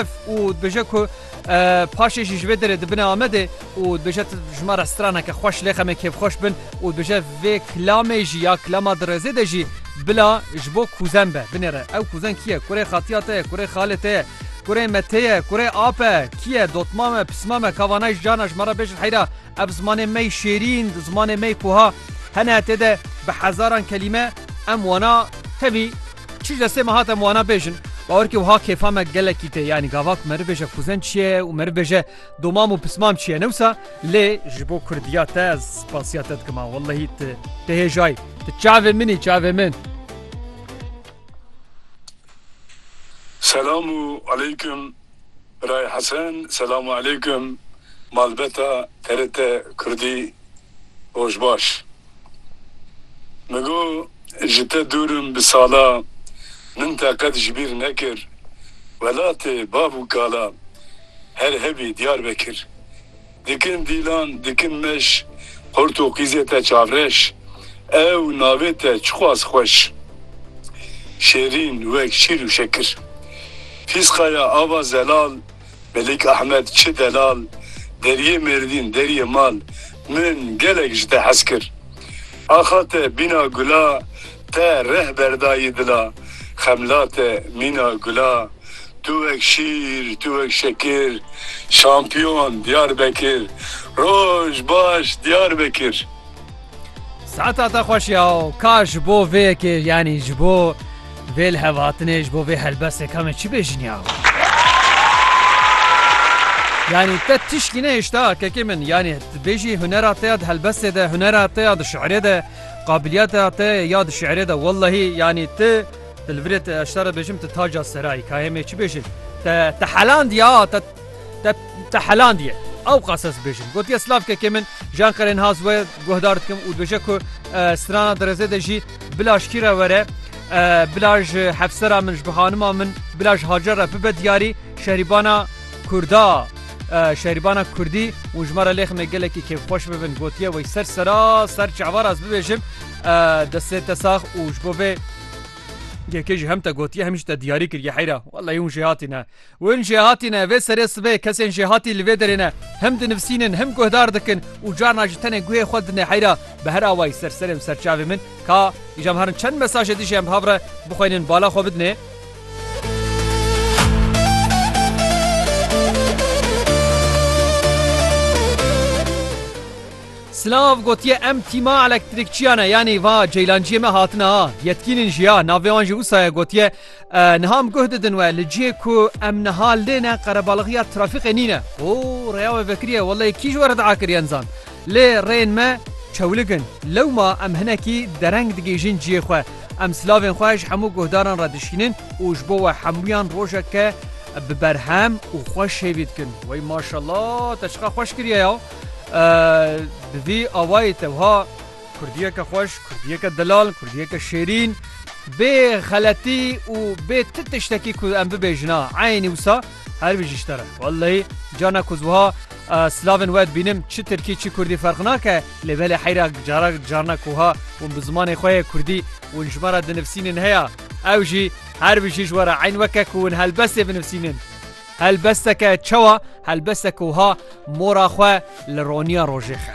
Ev û dibêje ku paşê jî ji vê derê dibine Amedê û dibêje ji me re straneke xweş lê xemê kêfxweş bin û dibêje vê kilamê jî ya kilama di rêzê de jî bila ji bo kuzen be binêre. Ew kuzen kî ye? Kurê xatiya te ye? Kurê xalê te ye? Kurê me tê ye? Kurê ape ye? Kî ye? Dotma me? Pisma me? Ka vanayî ji carna ji me re bêjin heyra ev zimanê me yî şêrîn, zimanê me yî ku ha hene tê de bi hezaran kelîme em wana tevî Çîj destê me hate em wana bêjin. Bawer ke wiha kêfa me gelekî tê yanî gava ku me ribêje Fuzen çi ye û me ribêje domam û pismam çi ye newsa lê ji bo kurdiya te ez spasiya te dikim a wellehî ti ti hêjayî ti çavê min î çavê min. Selam û aleykum. Birayê Hesen, Selamu Eleykum malbeta TRT Kurdî rojbaş. Min got ji te dûr im bi sala min te qet ji bîr nekir. Welatê bav û kala her hebî Diyarbekir. Dikin dîlan, dikin meş. Portûqîzê te çavreş. Ew navê te çiqas xweş. Şêrîn wek şîr û şekir. Fîsqa ya ava zelal. Melik Ahmed çi delal. Deriyê mêrdîn, deriyê mal. Min gelek ji te hez kir. Axa te bîna gula Te reh berdayî dila Xemla te mîna gula Tu wek şîr tu wek şekir Şampiyon Diyarbekir Roj baş Diyarbekir. Saeta te xweş ya ka ji bo vê yekê yanî ji bo. Vê li hev hatinê ji bo vê helbestê ka me çi bêjin yaho. Yanî te tişkî nehêşta kekê min yanî tu bêjî hunera te ya di helbestê de hunera te ya di şiirê de qabiliyeta te ya di şiirê de wellahî yanî tu di li virê te eştara bêjim tu taca serayî kayê me çi bêjin te te helandiya te Te te helandiye. Ew qas ez bêjim. Gotiye Slav kekê min ji Enqerên Haz we guhdar dikim û dibêje ku strana dirêzê de jî bila ji kî re were, bila ji hevsera min, ji bi hanima min, bila ji Hacer re bibe diyarî şehrîbana Kurda, şehrîbana Kurdî û ji me re lêximê gelekî kêfxweş bibin. Gotiye wey ser sera ser çavar ez bibêjim destê te sax û ji bo vê yekê jî hem te gotiye hem jî te diyarî kiriye heyra. Wellahî hûn jêhatî ne. Hûn jê hatî ne, vê serê sibê kesên jê hatî li vê derê ne. Him dinivsînin, him guhdar dikin û carna ji tenê guhê xwe dine heyra. Bi her awayî ser serê û ser çavê min, ka îjam herin çend mesajê dijî em bi hav re bixwînin bala xwe bidinê. Silav gotiye em tîma elektrîkçiya ne, yanî va ceylanciyê me hatine ha. Yetkînên jî ya, navê wan jî wisa ye, gotiye, Niha em guh didin we li cihê ku em niha lê ne qerebalixîya trafîqê nîne. Ho rêya we vekiriye welleyê kî ji we re dea kiriyen zan. Lê rêyên me çewlik in. Lewma em hinekî dereng digihîjin cihê xwe. Em silavên xwe ji hemû guhdaran re dişînin û ji bo we hemûyan rojeke bi berhem û xweş hêvî dikin. Wey maşallah te çiqa xweş kiriye ya. Bi vî awayê te wiha. Kurdiyeke xweş, Kurdiyeke delal, Kurdiyeke şêrîn, bê xeletî û bê ti tiştekî ku em bibêjina eynî wisa her wî ji ji te re. Wellehî carna ku ez wiha silavên we dibînim çi tirkî çi kurdî ferq nake lê belê heyra cara carna ku wiha hûn bi zimanê xwe yê kurdî hûn ji me re dinivsînin heya ew jî her wijî ji we re eyn weke ku hûn helbestê binivsînin. Helbesteke çawa? Helbesteke wiha mora xwe li roniya rojê xe.